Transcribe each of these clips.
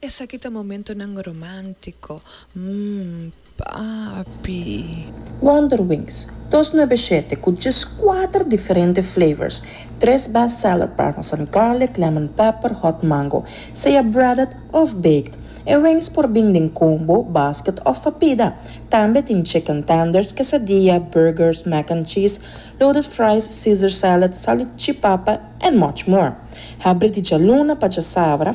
Esaki ta momentonan romántico, mm, papi. Wonderwings, dos nebe shete ku djes kuater diferente flavors, tres best seller parmesan garlic, lemon pepper, hot mango, sea breaded òf baked. E wings por bin den combo, basket òf pa pida. Tambe tin chicken tenders, quesadilla, burgers, mac and cheese, loaded fries, caesar salad, salichipapa and much more. Hebri di djaluna pa djasabra,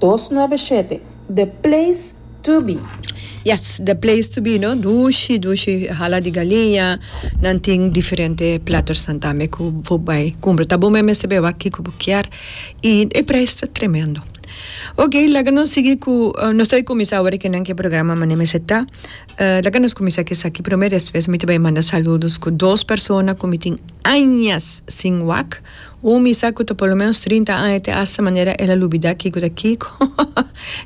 dos nuebe e shete, The Place To Be. Yes the place to be no dushi dushi hala di galiña nan tin diferente platternan tambe ku bo bai kumpra ta bo me mester bewa kiko bo kier i e prijs ta tremendo ok laga nos sigui ku nos ta bai kuminsá awor ke nan ke programa manera mester ta laga nos kuminsá ke esaki prome despues mi ta bai manda saludos ku dos persona ku mi tin añas sin wak. Un misa cu ta por lo menos trinta aña te asta manera el a lubida kico ta kico,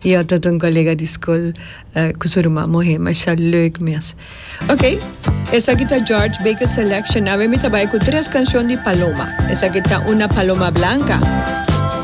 y otro ta un colega di scol cu su ruman muhe, masha leuk mes. Ok, esaki ta George Baker Selection, awe mi ta bay cu tres cancion di Paloma, esaki ta una Paloma Blanca.